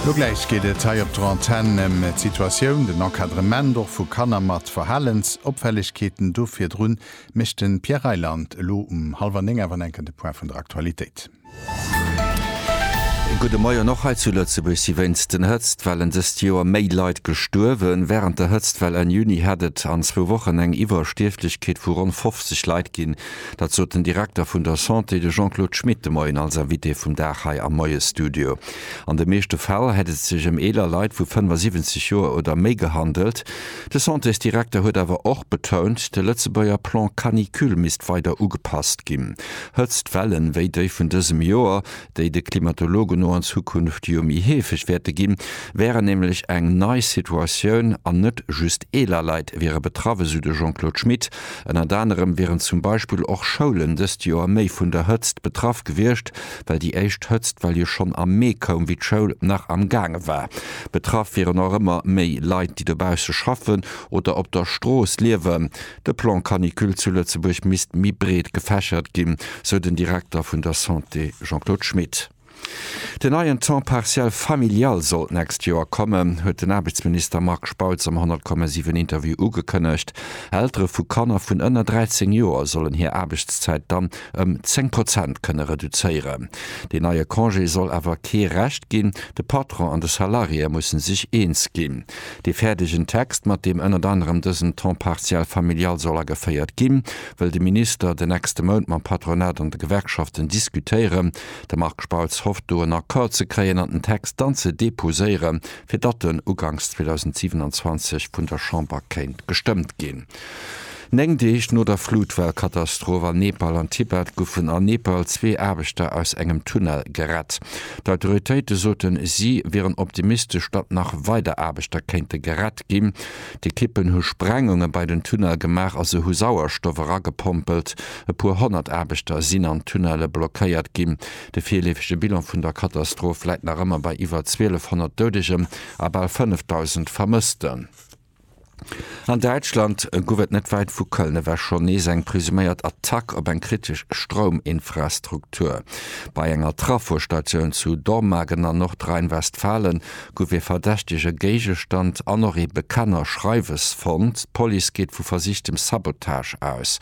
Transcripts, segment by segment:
Lo gläich geet et hei op der Antenn ëm d'Situatioun, den Encadrement och vu Kanner mat Verhalensopfällegkeeten. Do virdru mécht de Pierre Reyland elo um hallwer néng awer enke de Point vun der Aktualitéit. E gudde Moien. Och hei zu Lëtzebuerg si wéinst den Hëtztwellen dëst Joer méi Leit gestuerwen. Wärend der Hëtztwell Enn Juni hätt et an zwou Wochen eng Iwwerstierflechkeet vu ronn 50 Leit ginn. Dat sot den Direkter vun der Santé, de Jean-Claude Schmit, de Moien als Invité vum Dag hei am Moiesstudio. An de meeschte Fäll hätt et sech ëm eeler Leit vu 75 Joer oder méi gehandelt. De Santésdirekter huet awer och betount, de Lëtzebuerger Plan Canicule misst weider ugepasst ginn. Hëtztwellen wéi déi vun dësem Joer déi de Klimatologen no an Zukunft jo méi heefeg wäerte ginn, wäre nämlech eng nei Situatioun an net just eeler Leit wiere betraff, esou de Jean-Claude Schmit. Ënnert anerem wieren zum Beispill och Schoulen dëst Joer méi vun der Hëtzt betraff gewiescht, well déi éischt Hëtztwell jo schonn am Mee koum, wéi d'Schoul nach am gaange war. Betraff wieren och ëmmer méi Leit, déi dobausse schaffen oder op der Strooss liewen. De Plan Canicule zu Lëtzebuerg misst méi breet gefächert ginn, sou den Direkter vun der Santé Jean-Claude Schmit. Den neien Temps partiel familial soll d'nächst Joer kommen, huet den Aarbechtsminister Marc Spautz am 100,7 Interview ugekënnegt. Eltere vu Kanner vun ënner 13 Joer sollen hir Aarbechtszäit dann ëm 10 Prozent kënne reduzéieren. Deen neie Congé soll awer kee Recht ginn, de Patron an de Salariéë musse sech eens ginn. Dee fäerdegen Text, mat deem ënnert anerem dësen Temps partiel familial soll ageféiert ginn, wëll de Minister den nächste Mount mam Patronat an de Gewerkschaften diskutéieren. De Marc Spautz hofft do en Accord ze kréien an den Text dann ze deposéieren, fir datt en uganks 2027 vun der Chamber kéint gestëmmt ginn. Néng Deeg no der Flutwell-Katastroph an Nepal an Tibet goufen an Nepal zwee Aarbechter aus engem Tunnel gerett. D'Autoritéite soten, si wieren optimistesch, datt nach weider Aarbechter kéinte gerett ginn. D'Ekippen hu Sprengunge bei den Tunnel gemaach a se hu Sauerstoff eragepompelt. E puer honnert Aarbechter sinn an Tunnelle blockéiert ginn. De virleefege Bilan vun der Katastroph läit nach ëmmer bei iwwer 1.200 Doudeger a bal 5.000 Vermëssten. An Däitschland gouf et net wäit vu Köln ewech schonn nees eng presuméiert Attack op eng kritesch Strouminfrastruktur. Bei enger Trafostatioun zu Dormagen an Nordrhein-Westfalen gouf ee verdächtege Géigestand an och ee Bekennerschreiwes fonnt. D'Police geet vu versichtem Sabotage aus.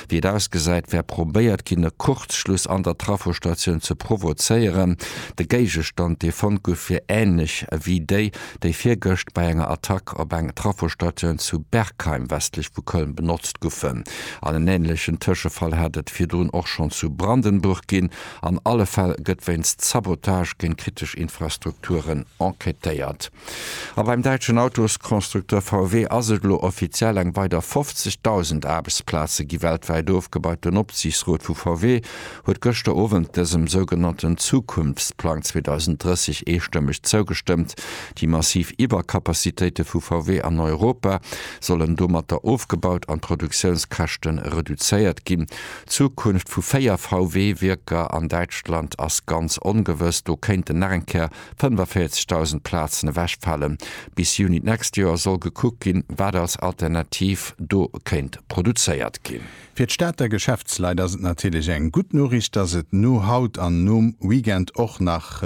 Wéi et ausgesäit, wär probéiert ginn, e Kurzschluss an der Trafostatioun ze provozéieren. De Géigestand, dee fonnt gouf, wier änlech ewéi déi, déi virgëscht bei enger Attack op eng Trafostatioun zu Bergheim westlech vu Köln benotzt gufen. An en änlechen Tëschefall hat et virdrun och schonn zu Brandenburg ginn. An alle Fäll gëtt wéinst Sabotage géint kritesch Infrastrukturen enquêtéiert. A beim däitschen Autoskonstrukteur VW ass et elo offiziell, Eng weider 50.000 Aarbechtsplaze gi weltwäit ofgebaut. Den Opsiichtsrot vu VW huet gëschter Owend dësem sougenannten Zukunftsplang 2030 eestëmmeg zougestëmmt. Déi massiv Iwwercapacitéite vu VW an Europa sollen domatter ofgebaut an d'Produktiounskäschte reduzéiert ginn. D'Zukunft vu véier VW-Wierker an Däitschland ass ganz ongewëss. Do kéinten nach eng Kéier 45.000 Plazen ewechfalen. Bis Juni d'nächst Joer soll gekuckt ginn, wat als Alternativ do kéint produzéiert ginn. Fir d'Stater Geschäftsleit ass et natierlech eng gutt Noriicht, dass et no haut an nom Weekend och nach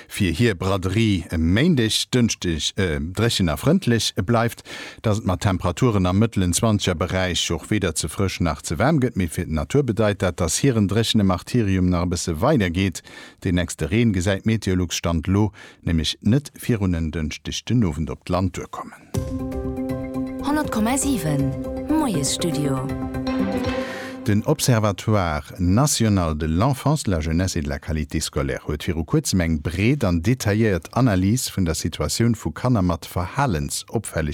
fir hir Braderie Méindeg, Dënschdeg dréchen a frëndlech bleift, dass et mat Temperaturen am mëttelen zwanzeger Beräich och weder ze frësch nach ze waarm gëtt. Mee fir d'Natur bedeit dat, dass hiren dréchene Martyrium nach e bësse weidergeet. Deen nächste Reen gesäit Meteolux, Stand elo, nämlech net virun en Dënschdeg den Owend op d'Land duerkommen. 100,7 Moiesstudio. Den Observatoire national de l'enfance, de la jeunesse et de la qualité scolaire huet viru kuerzem eng breet an detailléiert Analys vun der Situatioun vu Kanner mat Verhalensopfällegkeeten